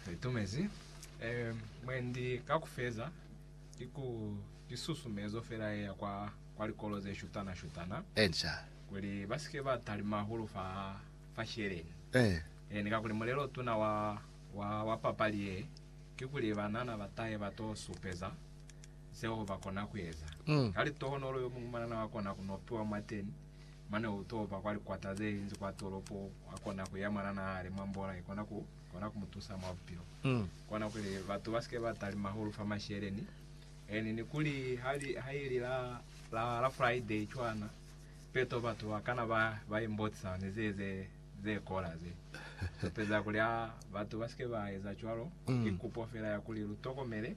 Litumezi mwendi ka ku feza ki ku ki susumezo fela ye ya kwa kwa likolo ze shutana shutana kuli ba si ke ba talima hahulu fa fa sheleni. Ene kakuli mulelo o tuna wa wa wa papali ye ki kuli banana ba tahe ba to supeza zeo ba kona ku eza. Ka litohonolo yo muñwi mwanana wa kona ku no piwa mwateni Mane u topa kwa likwata ze linzi kwa tolopo, a kona ku ya mwa na naha hali mwa mbola i kona ku kona ku mu tusa mwa bupilo. Kona kuli batu ba si ke ba talima hahulu fa masheleni. Eni ni kuli ha li, ha ili la, la, la Friday cwana, peto batu ba kana ba, ba imbotisa ni ze, ze, ze kola ze. Lupeza kuli a batu ba si ke ba eza cwalo, ki kupo fela ya kuli lu tokomele,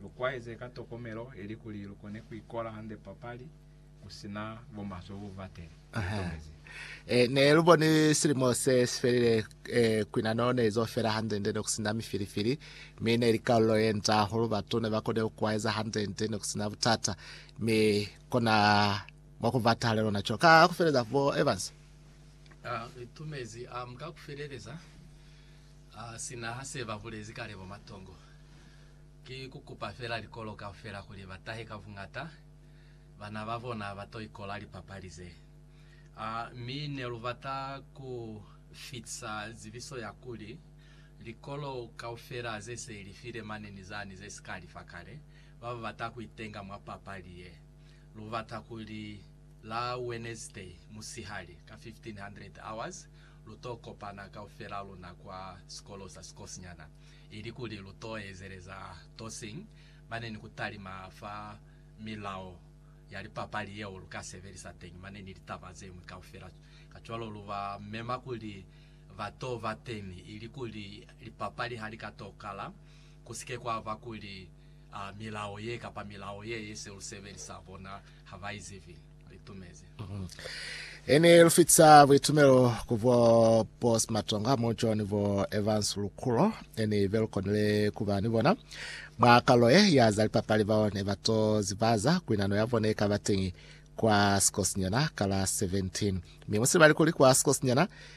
lu kwaeze ka tokomelo, ili kuli lu kone ku ikola hande papali. Ku si na bo maswe ku bateni. Tomezi. E, ne lu boni silimo se si felile, e, kwinano ne izo fela hande-nde, ne ku si na mifilifili, mi ne ili kalulo ye nca hahulu. Batu ne ba konile ku kwaeza hande-nde, ne ku si na butata, mi kona mwa ku bata hale lona. Cwalo ka ku feleza, bo Evans. A, Re tomezi. Um, ka ku feleleza, a, sina ha se ba bulezi kale bo Matongo, ki ku kupa fela likolo kaufela kuli ba tahe ka buñata. bana ba bona ba to ikola lipapali ze. A mi ne lu bata ku fitisa zibiso ya kuli, likolo kaufela ze se li file mane ni zani ze si ka li fa kale, ba ba bata ku itenga mwa papali ye. Lu bata kuli la Wenezday musihali ka 1500 hours, lu to kopana kaufela luna kwa sikolo sa sikosinyana, ili kuli lu to ezeleza Tossing Mane ni ku talima fa milao ya lipapali yeo lu ka sebelisa teñi mane ni litaba ze ñwi kaufela. Kacwalo lu ba mema kuli ba t'o ba teñi ili kuli lipapali ha li ka t'o kala, ku si ke kwa ba kuli milao ye kapa milao ye ye se lu sebelisa bona ha ba i zibi. Ini lufitisa buitumelo ku bo Boss Matonga, Mo John ni bo Evans Lukulo, ini belukonile kuba ni bona mwa kalo ye ya za lipapali bao ne bato zibaza kuinano ya bone ikaba teñi kwa sikosinyana ka la 17 mi musibali kuli kwa sikosinyana